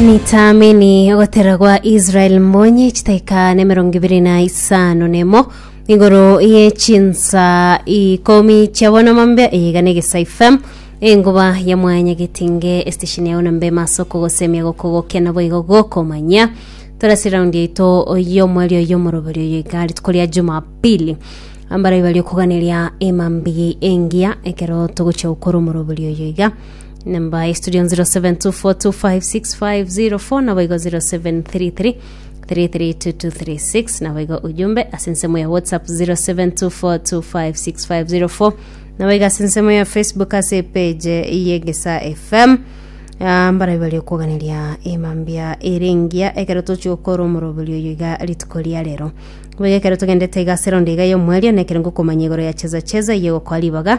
Nitaamini ogotera gwa Israel Mbonyi chitaika na emerongo ibere na isano nemo igoro ye chinsa ikomi chia bono mambe eyaiga na egesa ifem enguba ya mwanya getinge estation yao na mbe maso kogosemia gokogokia na boigo gokomanya torasi round yaito yomweri oyo moroberi oyo igari tukoria jumapili ambara ibari okuganeria emambigi engiya ekero togochia gokora omoroberi oyo iga namba ya studio 0724256504 nabo igo 0733 332236 nabo igo ujumbe ase ensemo ya whatsapp 0724256504 nabo igo ase ensemo ya facebook ase page yegesa fm Ah, mbarabi bari okwoganeria emambia erengia ekero tochi okora omoroberi oyo iga rituko ria rero boigo ekero togendete iga ase round iga y'omwerio nekero ngokomanya igoro ya cheza cheza iye gokoa ribaga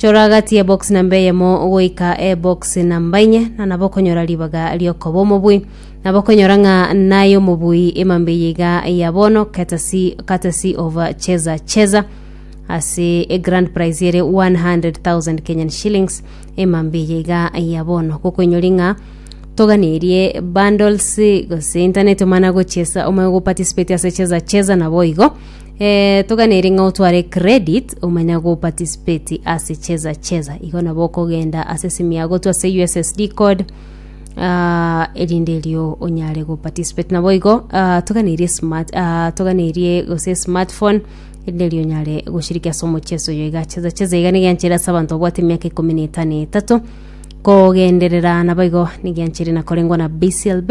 Chora agati y'ebox namba eyemo goika ebox namba inye, na nabo okonyora ribaga riokoba omobui. Nabo okonyora ng'a naye omobui emambia eye iga ya bono courtesy, courtesy of Cheza Cheza ase egrand prize ere 100,000 Kenyan shillings emambia eye iga ya bono. Gokoinyori ng'a toganerie bundles gose internet omana gochesa omanye goparticipate ase Cheza Cheza nabo igo Eh, toganeri ng'a otware credit omanya go participate ase cheza cheza igo nabo okogenda ase simu yago to ase ussd code ah, erinde erio onyare go participate nabo igo ah, toganerie smart ah, toganerie gose smartphone erinde erio onyare goshiriki ase omocheso oyo iga cheza cheza iga nigianchere ase abanto babwate emiaka ikomi na etano etato kogenderera nabo igo nigianchere nakorengwa na bclb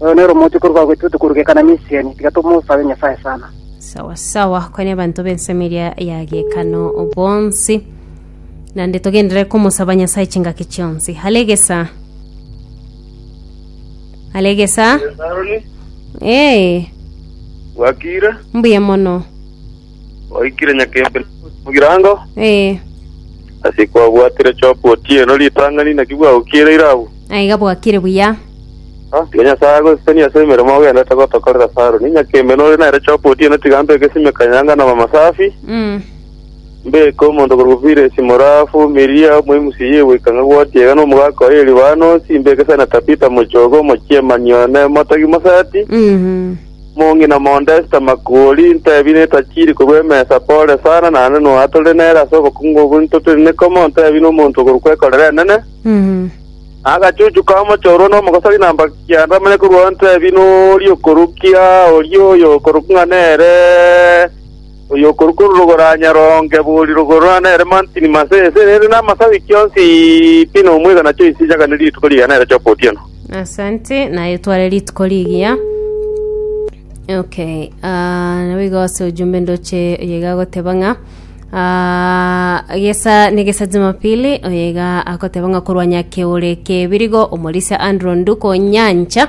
Oyo nere omochie korwa gwaitu tokorugeka na Misiani, tiga tomosabe Nyasae sana. Sawa sawa, kwenye abanto b'ensemo eria ya gekano bonsi, nande togendere komosaba Nyasae chingaki chionsi. Alegesa, alegesa, Aroni, ee, bwakire, mbuya mono. Oikire nyakembe mugirango Ee, ase kwabwatire chopu otieno ritang'ani naki bwagokiire irabu aiga bwakire buya. Ah, tiga nyasae agoseseni ase emeremo ogendete gotokorera ase aroni nyakembe nore nere chopu otieno tiga mbeke esime kanyanga na mama safi Mm. mbeke omonto korwa piresi morafu miria omoimusi yegoika ng'a gwotie iga na omogaka oye libanosi mbeke sana tapita mochogo omochiemani one motagi mosati Mhm. Omong'ina omonto Esta Makuori intebi netachiri korwa emesa, pole sana, naende noa tore nere ase obokungu obwo ntotiri nekomo, ntebi nomonto okorokwa ekorera enene. Na agachuchu ka mochorwa nomogosori na mbaka kianda amanye korwao ntebi noria okorukia oria oyo okorokwa ng'a nere. Oyokorwa korwa rogoro anyaronge bori rogoro na nere mantini mase esere ere na amasabi kionsi pi nomwegana choisi echakane rituko riga nere choka otieno. Asante, naye etware rituko rigiya. Okay, ah, nabo igo ase ojumbe ndoche oyega agoteba ng'a ah, gesa negesa jumapili oyega agoteba ng'a korwa nyakeore kebirigo omorisia Andrew Nduko Nyancha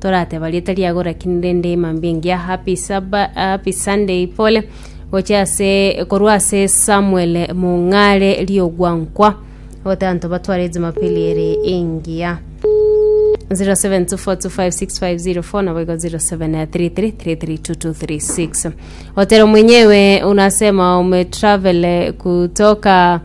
torateba rieta riago rakini rende emambia engiya happy Saba- happy sunday pole gochia ase korwa ase samuel mong'are riogwankwa otanto batware ejumapili ere engiya 0724256504 nabo igo 0733332236 otero mwenyewe unasema umetravel kutoka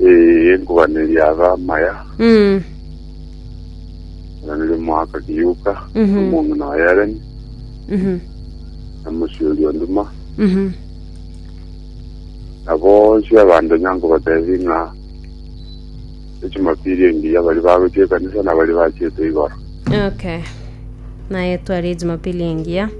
Eh, enkobaneria abe amaya, Mm. oranire omoaka kiyuka, Mhm. omong'ina wa Yareni, Mhm. na mosiori o Duma, Mhm. na bonsi abanto nyankobatebi ng'a echumapili engiya bari bagochia ekanisa na bari bachiete igoro. Okay. Naye twari Jumapili engiya.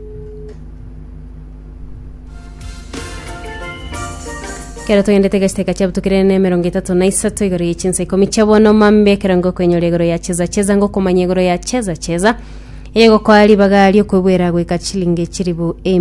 Ekero togendete egacheta eka chiabutukire na emerongo etato na isato igoro ye chinsa ikomi chia bono mambe ekero ngokoinyora igoro ya cheza cheza ngokomanya igoro ya cheza cheza eye gokoa ribaga ri'okwebwera goika chilingi chiribu emi